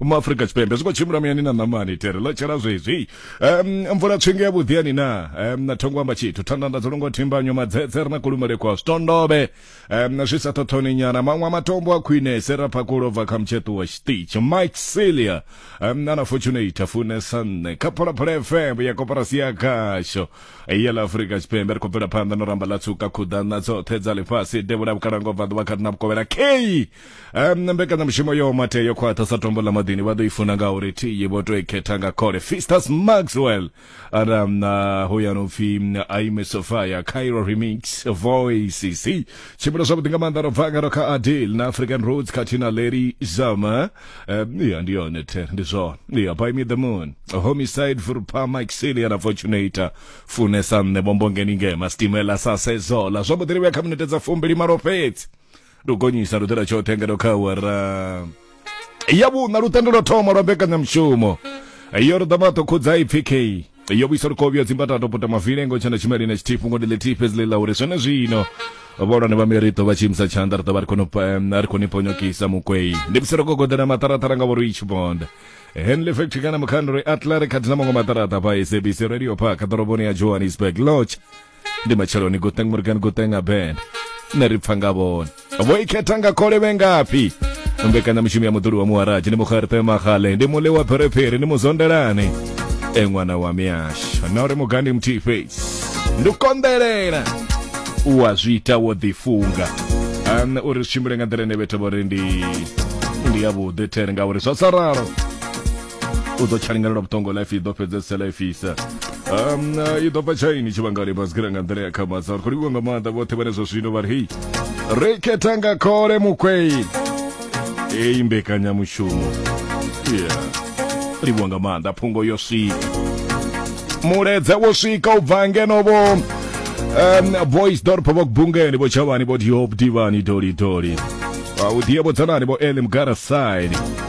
uma afrika tshipembe zwi khou tshimbila muyani na ṋamani tere ḽo tshela zwezwi um mvula tswinge ya vhuḓi yani na um na thongo amba tshithu thanda dzi longo thimbanyo madzedze ri na kulumele kwa zwitondobe um zwi sa thothoni nyana maṅwe a matombo a khwine sera phakulo bva kha mutsheṱu wa tshiṱitshi mike celia um na na fortunate funesa nṋe kha phalaphala fm ya koporasi ya khasho ya ḽa afrika tshipembe ri khou bvela phanḓa no ramba ḽa tsuka khuḓana dzoṱhe dza ḽifhasi devhula vhukalango bva ḓuvha kha na vhukovhela kei um, na mbekanyamushumo yo mate yo khwaṱha sa tombo ḽa maḓini vha ḓo i funa nga uri thiyi vho to i khetha nga khole fistas maxwell ara um, na uh, hoyano pfi um, aime sofia cairo remix voices tshimbila zwavhuḓi nga maanḓa ro bva ngaro kha adil na african roads khathihi na larry zama um, ya ndi yone the ndi zwone ya by me the moon homicide vurpa mike silia na fortunator funesa nṋe bombongeni ngema stimela sa sezola zwavhuḓi ri vhuya kha minete dza fumbili malo fhedzi ndo gonyisa lutendo tshoṱhe ngeno kha awara ya vhuṋa lutendo lwa thoma lwa mbekanyamushumo yo ri ḓama ṱokhudza ipfi k yo vhuisa lukovhyo dzimbatato puta mavilengo tshanda tshimeli na tshithifu ngo ndile thife zile ḽa uri zwone zwino vholwane vha miriṱo vha tshiimisa tshanḓa ri ḓo vha ri khou pa- em, ri khou ni ponyokisa mukwei ndi musi ro gogodela maṱaraṱara nga vhori itshi bonda henley factory kana mukhandori atla ri khathi na maṅwe maṱaraṱa pa sabc radio park ḓoroboni ya johannesburg lodge ndi matsheloni guteng morgan guteng abend nṋe ri pfa nga vhone vho i khetha nga khole vhe ngafhi mbekanyamushumo ya muḓuli wa muharaji ndi mukgerte magale ndi mule wa pherephere ndi muzondelani e ṅwana wa miyasho na uri mugandi muthihi fhedzi ndi u konḓelela u a zwi ita wo ḓifunga ane uri zwi tshimbile nga nḓila ine vhethu vho ri ndi ndi yavhuḓi there ngauri zwa sa ralo u ḓo tsha linganelwa vhuṱongo life i ḓo fhedzesa life isa um i ḓo bva tshaini tshivhangani basikira nga nḓila ya khamasa ri khou livhiwa nga maanḓa vhoṱhe vhane zwa zwino vha ri hei ri khetha nga khole mukwei eyi mbekanyamushumo yeah. livhiwa nga maanḓa phungo yo swika muledze wo swika u bva ngeno vho um, boys dorpo vho kubungeni vho tshavhani vho diop divani dolidoli vha u diye vho dzanani vho ele mugara side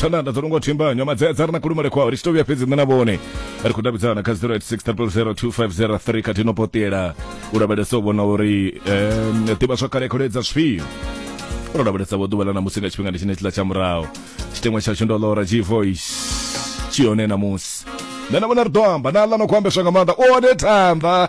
thandanda dzo nonga thimba nyama dzedza ri na kulumele kwao ri tshi to vhuya fhedzi nṋe na vhone ri khou davhidzana kha 0860002503 kha tino potela u lavhelesa u vhona uri um, ḓivha zwa kale kholedza zwifhio ro lavhelesa vho ḓuvha ḽa ṋamusi nga tshifhingani tshine tshiḽa tsha muraho tshiteṅwa tshashu ndo lora g voice tshi hone ṋamusi nṋe na vhona ri ḓo amba na ḽa no khou ambeswa nga maanḓa one thanḓa